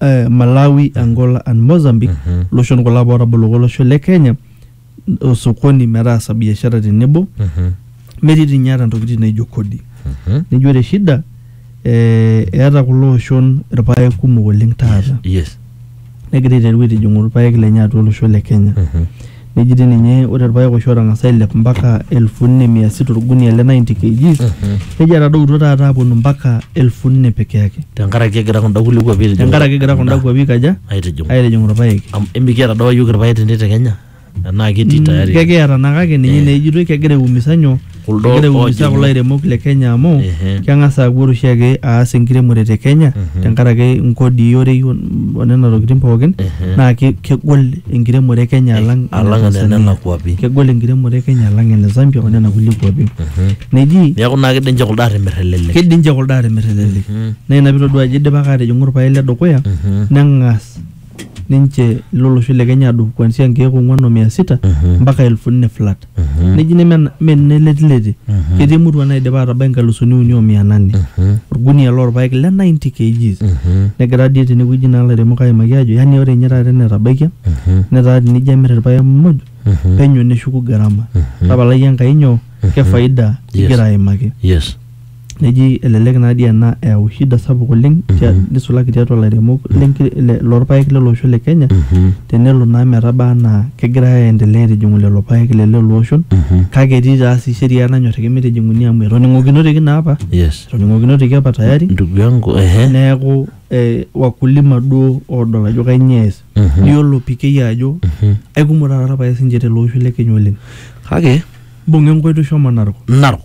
eh, Malawi, Angola and Mozambique Mhm. loshon kulo apa ootaboluko olosho le Kenya osokoni metaasa biashara tenebo Mhm. metii dii ninye ata ntokitin naijo kodi Mhm. nijo ore shida eh, eeta kulo oshon irpaek kumok oleng taata Yes. negira aiteru aitijing'u irpaek lenye atua olosho le Kenya Mhm. Neji dii ninye ore irpaek oshi ootang'asa ailep mpaka elfu nne mia sita orgunia le 90 kgs neji etadoutuo taata aaponu mpaka elfu nne peke yake tenkaraki egira kunda kulie kuapi aitijing'u tenkaraki egira kunda endaa. kuapi aikaja aitijing'u aitijing'u irpaek. Am- emikiata doi apa iyiook irpaek tende te kenya enaa ketii tayari Kekiata naa kake ninye naa ejitoi kegira aiumisa nyoo Kuldo Egira aiumiza oojing'u. kulo airemok le Kenya amu Ehe. keng'as aaku ore oshiake aas enkiremore te Kenya tenkaraki inkodii orei o- o nena tokitin pookin Ehe. naa ke- kegol enkiremore e Kenya alang ene alang ene Tanzania. nena kuapi. Kegol enkiremore e Kenya alang ene Zambia o nena kulie kuapi. Neji Neeku naa kidim ninche kuldo aatimir elelek. kidim ninche kuldo aatimir elelek. Naa ina piitodua ajo idipaki aatijing'u irpaek le dukuya neng'as ninche ilo losho le Kenya adung kuanzia nkeek ong'uan o mia sita mpaka elfu nne flat neji neme mme nenetilete ketii emurua naidipa atabai nkalusuni uni o mia nane orgunia lorpaek le 90 kgs negira dii tenewueji naa ilairemok aimaki aajo yani ore ninye taata enetabaikia netaa tenijo amirr irpaek muj penyo neshuku gharama tapalai Enkai nyoo ke faida igira aimaki yes neji elelek naa dii ena eyau shida sapuk oleng tia- nisulaki tiatua ilairemok lenki- le- lorpaek lele osho le Kenya tenelo naa metaba anaa kegirai aendelea aitijing'u lelo paek le lelo oshon kake etii taa sii sheria nanyorriki mitijing'uni amu etoning'okinoteki naa apa yes etoning'okinoteki apa tayari ndugu yangu ehe neeku eh, wakulima duo odol ajo kainyoo ees Mhm. niyiolo pikei ajo Mhm. aikumok taata irpaek sinche tele osho le Kenya oleng kake mbung'a enkoitoi shomo Narok narok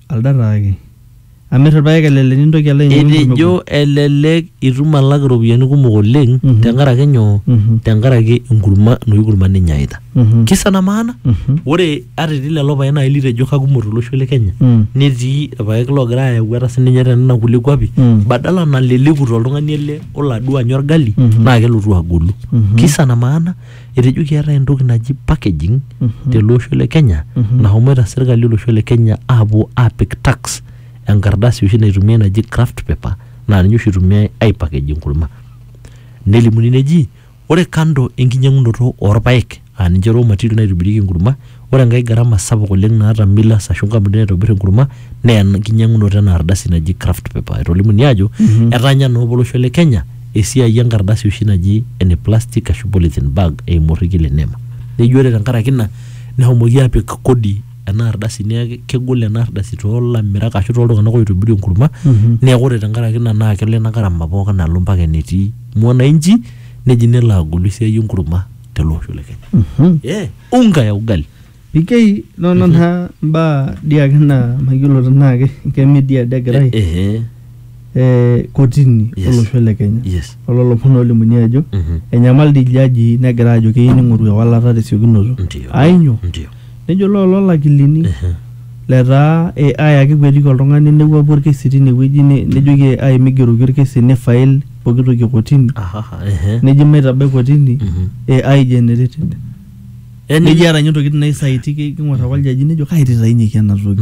Alda taake. Amir irpaek elelek nintoki alo ainyang'u enkurma Etejo egol. elelek itum alak iropiyiani kumok oleng Mhm. tenkaraki nyoo? Mhm. Tenkaraki enkurma enoshi kurma ninyaita. Mhm. Kisa na maana? Mhm. Ore ata etii lelo paek naaji litejo kakumok tolosho le Kenya Mm. netii irpaek loogira ayau ata sininye tenena kulie kuapi Mm. badala naleleku toltung'ani ele olo aduo anya orgali Mhm. naa kelotu agolu. Mhm. Kisa na maana? etejo keetae entoki naji packaging Mhm. tele osho le Kenya Mhm. nahomoita serkali olosho le Kenya aapuo aapik tax enkardasi oshi naitumiai naji craft paper naa ninye oshi itumiai aipackage enkurma nelimuni neji ore kando enkinyang'unoto orpaek aa ninche raw material naitobirieki enkurma Ore enkae garama sapuk oleng naata millers ashu nkampunini naitobir enkurma naa enkinyang'unoto ena ardasi naji kraft paper. Etolimu ninye ajo etaanya naa apa olosho le Kenya esiai enkardasi oshi naji ene plastic ashu polythene bag eimu orrekie le nema. Neji ore tenkaraki ina nehomoki apik kodi ena ardasi neeku kegol ena ardasi toolamirak ashu toltung'anak oitobiru enkurma neeku ore tenkaraki ina naa kelo ina garama pookin alo mpaka enetii mwananchi neji nelo agolu esiai enkurma tele osho le Kenya. unga ya ugali. Pikei nono naa mbaa dii ake naa mayiolo tenaa ke ke media dii egirai Ehe. eh, kotini Yes. olosho le Kenya Yes. ololopon olimuni ajo Mhm. enyamal dii iljajii negira ajo keyieu ning'oru ewalata tesiokinoto Ndio. ainyo Ndio. nejo loo loolakilini Ehe. letaa eh, ai ake ekuetiki oltung'ani newuapu orkesi tinewueji ne- nejoki ai migeroki orkesi nifail pooki toki e kotini Ahaha, ehe. neji maitabai kotini e ai generated Yaani- neji eeta ninye ntokitin naisaiti ki- king'or ake oljaji nejo kaititainyeki ena toki